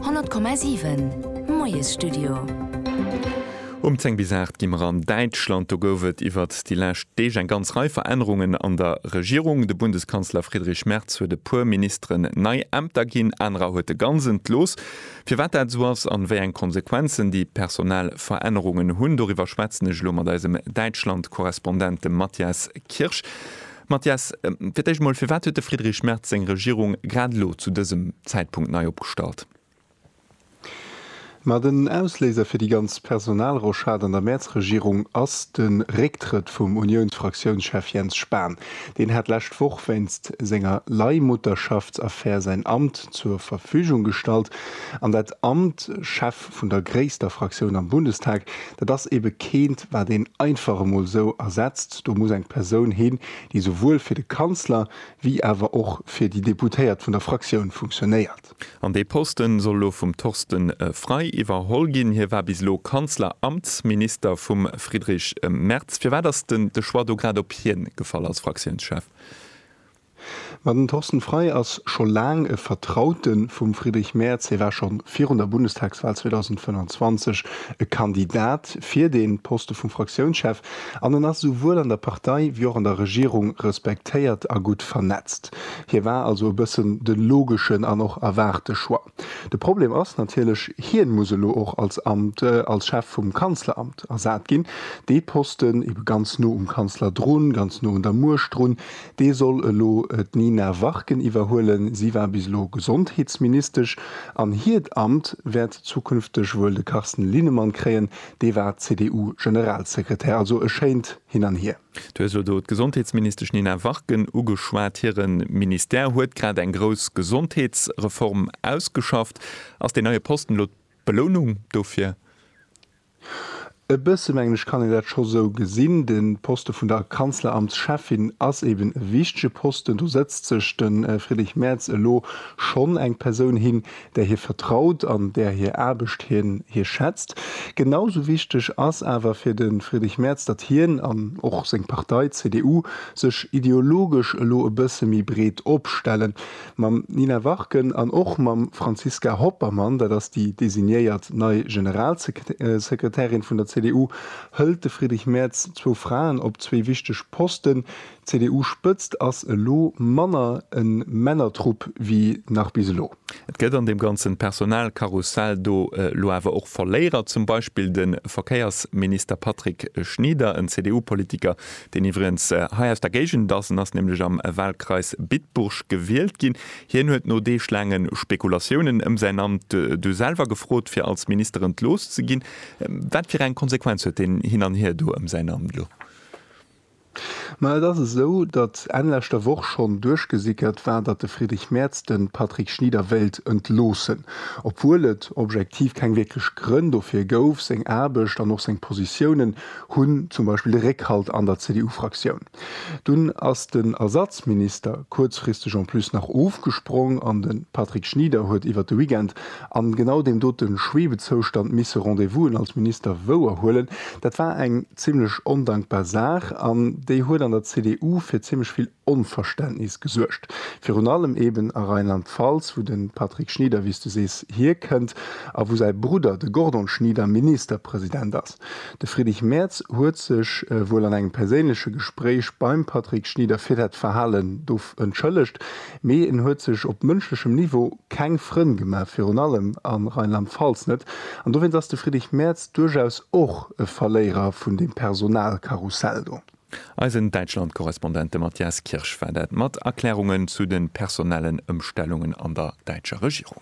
100,7 Moiesstudio. Um 10 bis 8 gi mer an Däitschland. Do gouf et iwwert déi lescht Deeg eng ganz Rei Verännerungen an der Regierung. De Bundeskanzler Friedrich Merz huet e puer Ministeren nei Ämter ginn, anerer huet e ganz entlooss. Firwat dat esou ass an wéi eng Konsequenzen déi personell Verännerungen hunn, doriwwer schwätzen ech elo mat eisem Däitschland-Korrespondent, dem Matthias Kirsch. Mathias, fir d'éischt emol, firwat huet de Friedrich Merz seng Regierung grad elo zu dësem Zäitpunkt nei opgestallt? Ma den Ausléiser fir déi ganz Personalrochade an der Merz-Regierung ass de Récktrëtt vum Uniounsfraktiounschef Jens Spahn. Deen hat lescht Woch wéinst senger Leihmutterschaftsaffär säin Amt zur Verfügung gestallt an dat Amt Chef Chef vun der gréisster Fraktioun am Bundestag. Dat ass ebe keent, wat een einfach emol esou ersetzt. Do muss eng Persoun hin, déi souwuel fir de Kanzler wéi awer och fir déi Deputéiert vun der Fraktioun funktionéiert. An dee Posten soll elo vum Torsten Frei iwwerholl ginn. Hie war bis elo Kanzleramtsminister vum Friedrich Merz. Firwat ass de Choix do grad op hien gefall als Fraktiounschef? Ma den Thorsten Frei ass scho laang e Vertraute vum Friedrich Merz. Hie war scho virun der Bundestagswal 2025 e Kandidat fir de Poste vum Fraktiounschef an en ass esouwuel an der Partei wéi och an der Regierung respektéiert a gutt vernetzt. Hie war also e bëssen de logeschen an och erwaarte Choix. De Problem ass natierlech, hien muss elo och als Amt als Chef vum Kanzleramt ersat ginn. Dee Posten, ebe ganz no um Kanzler drun, ganz no un der Muecht drun, Dee soll elo d'Nina Warken iwwerhuelen. Si war bis elo Gesondheetsministesch an hiert Amt wäert zukünfteg wuel de Carsten Linnemann kréien. Dee war CDU-Generalsekretär. Also e schéint Hin an Hier. Du hues elo do d'Gesondheetsministesch Nina Warken ugeschwat. Hire Ministère huet grad eng grouss Gesondheetsreform ausgeschafft. Ass deen neie Posten elo d'Belounung dofir? E bësse mengen ech kann een dat scho sou gesinn. De Poste vun der Kanzleramtscheffin ass eben e wichtege Posten. Do sëtzt sech de Friedrich Merz elo schonn eng Persoun hin, där hie vertraut an där hir Aarbecht hie schätzt. Genau sou wichteg ass awer fir de Friedrich Merz, datt hien an och seng Partei, d'CDU, sech ideologesch elo e bësse méi breet opstellen. mam Nina Warken an och mam Franziska Hoppermann, dat ass déi designéiert nei Generalsekretärin vun der CDU, hëlt de Friedrich Merz zwou Fraen op zwee wichteg Posten. D'CDU-Spëtzt ass elo manner e Männertrupp wéi nach bis elo. Et gëtt an deem ganze Personalkarussell do elo awer och Verléierer, zum Beispill de Verkéiersminister Patrick Schnieder, en CDU-Politiker, deen iwwregens hei aus der Géigend ass, en ass nämlech am Wahlkreis Bitburg gewielt ginn. Hien huet no deeglaange Spekulatiounen ëm säin Amt du selwer gefrot, fir als Minister entlooss ze ginn. Wat fir eng Konsequenz huet deen Hin an Hier do ëm säin Amt elo? Ma et ass esou, datt Enn leschter Woch schonn duerchgesickert war, datt de Friedrich Merz de Patrick Schnieder wéilt entloossen, obwuel et objektiv keng wierklech Grënn dofir gouf. Seng Aarbecht an och seng Positiounen hunn zum Beispill de Réckhalt an der CDU-Fraktioun. Dunn ass den Ersatzminister kuerzfristeg en plus nach ofgesprong an de Patrick Schnieder huet iwwert de Weekend an genau deem dote Schwebezoustand misse Rendez-Vousen als Minister wouer huelen. Dat war eng zimmlech ondankbar Saach an déi huet an der CDU fir zimmlech vill Onverständnis gesuergt, virun allem eben a Rheinland-Pfalz, wou de Patrick Schnieder, wéi s du sees, hierkënnt a wou säi Brudder, de Gordon Schnieder, Ministerpresident ass. De Friedrich Merz huet sech wuel an engem perséinleche Gespréich beim Patrick Schnieder fir dat Verhalen do entschëllegt, mee en huet sech op mënschlechem Niveau keng Frënn gemaach, virun allem a Rheinland-Pfalz net. An dowéinst ass de Friedrich Merz duerchaus och e Verléierer vun deem Personalkarussell do. Eisen Däitschland-Korrespondent, de Mathias Kirsch, war dat mat Erklärungen zu de personellen Ëmstellungen an der däitscher Regierung.